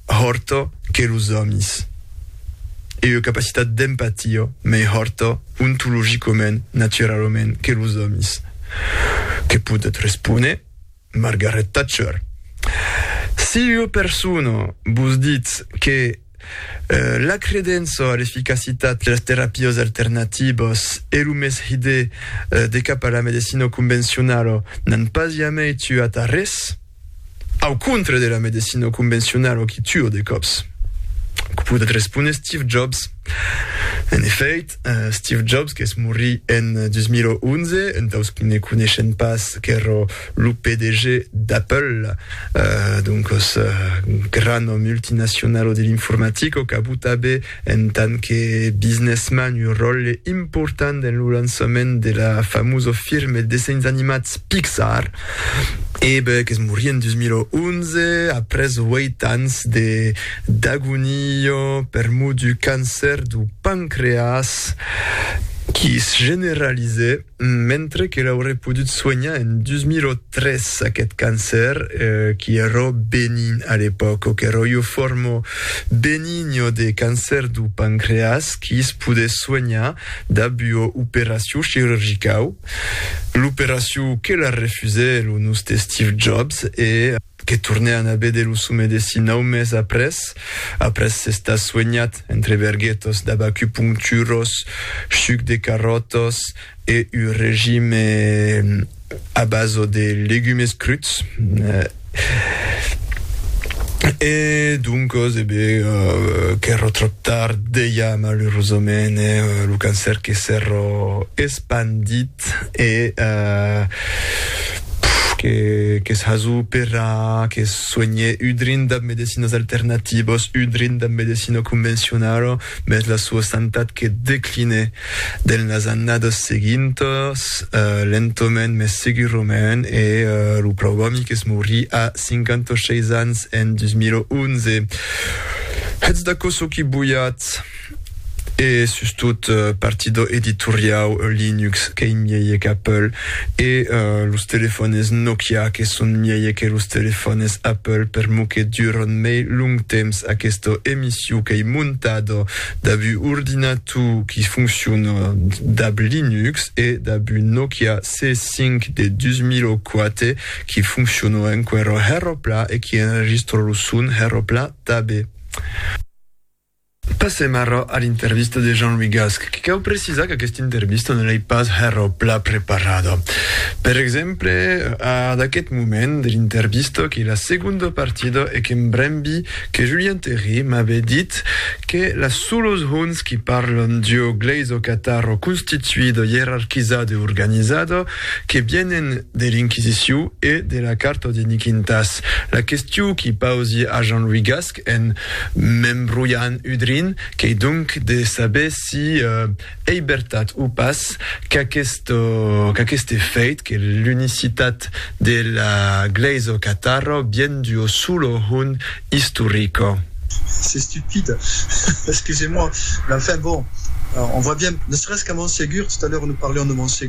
hòrto que los òmis. E ua capacitat d'empatia mei hòrta ontologicament, naturalament, que los òmis. Que podèt respóner Margaret Thatcher. Si ua persona vos ditz que la credença a l'eficacitat de las terapias alternativas e lo mès hidé de cap a la medecina convencionala n'an pas jamei tuat arrés, Au contre de la medecina convencionala o qui tua de còps? Que podèt respóner Steve Jobs? En efèit, Steve Jobs, qu'es morit en 2011, entaus que ne coneishen pas qu'èra lo PDG d'Apple, doncas, grana multinacionala de l'informatica, qu'abotava En tant que businessman, un ròtle important dens lo lançament de la famosa firma de dessenhs animats Pixar, Ebert qu'es morit en 2011 après 8 ans de d'agonia per mot du cancèr du pancreas qu'i es generalizèt. Mentre que l'aurè podut soenhar en 2003 aquest cancer qui ero benin a l'epòca, o qu'ero io formo benigno de cancer du pancreas qui's podé soenhar dab ua operacion chirurgicau, l'operacion que la refusè lo noste Steve Jobs e. que tornèan a véder lo sò medecin nau mes après, après s'estar suenhat entre verguetos d'abacupuncturos, chuc de carròtos e un regime a baso de legumes cruts. E doncos, e be, qu'èro tròp tard, deia malerosament, lo cancèr que s'èro espandit. Eth e qu'es hazó pera que suenhe udrin dab medecinas alternativos, udrin dab medecina convencionala, mès la sua santat que decline denas annadas seguintas, lentoment mès segurament, e lo pròu òmi qu'es morí a 56 ans en 2011. Hètz d'aquò çò qui boiatz. e sustot partidor editoriau Linux qu'ei mièlhe qu'Apple e los telefònes Nokia que son mièlhe que los telefònes Apple per mo que durant mei long temps aquesta emissiu qu'ei montada dab un ordinator qui foncciona dab Linux e dab un Nokia C5 de 2004 qui foncciona enquera hèra plan e qui enregistra lo son hèra plan tanben. Passèm ara a l'intervista de Jean-Louis Gasque, que cau precisar qu'aquesta intervista ne l'ai pas hèr au plat preparada. Per exemple, a d'aqueth moment de l'intervista, qu'ei la segonda partida e que m'brembi que Julien Théry m'abe dit que las solos hons qui parlan d'ua glèisa catara constituida, ierarquizada e organizada, que vienen de l'Inquisiciu e de la Carta de Niquintàs. La questiu qui pausi a Jean-Louis Gasque, en m'embrolhan udrin, qu'ei donc de saber si ei bertat o pas qu'aqueste fèit que l'unicitat de la Glèisa catara vien d'uo solo hon istorico. C'est stupide, excusez-moi, mais enfin bon, on voit bien, ne serait-ce qu'à Montségur, tout à l'heure nous parlions de Montségur,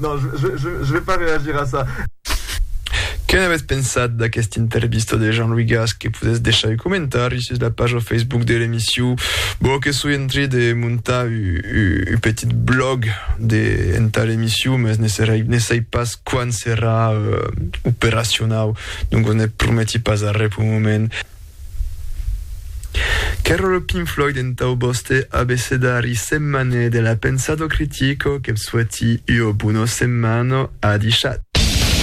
Non, je, je, je, je vais pas réagir à ça. Que n'avètz pensat d'aquesta intervista de Jean-Louis Gasque? Que podètz deishar un comentari sus la paja Facebook de l'emission. Bon, que soi en trai de montar u, u, u petit blog de, entà l'emission, mas ne, serai, ne sai pas quan serà euh, operacionau, donc ne prometi pas arrè pel moment. Qu'èra lo Pink Floyd entau vòste abecedari setmanè de la pensado critico, que'b soueti ua bona setmana, adishat!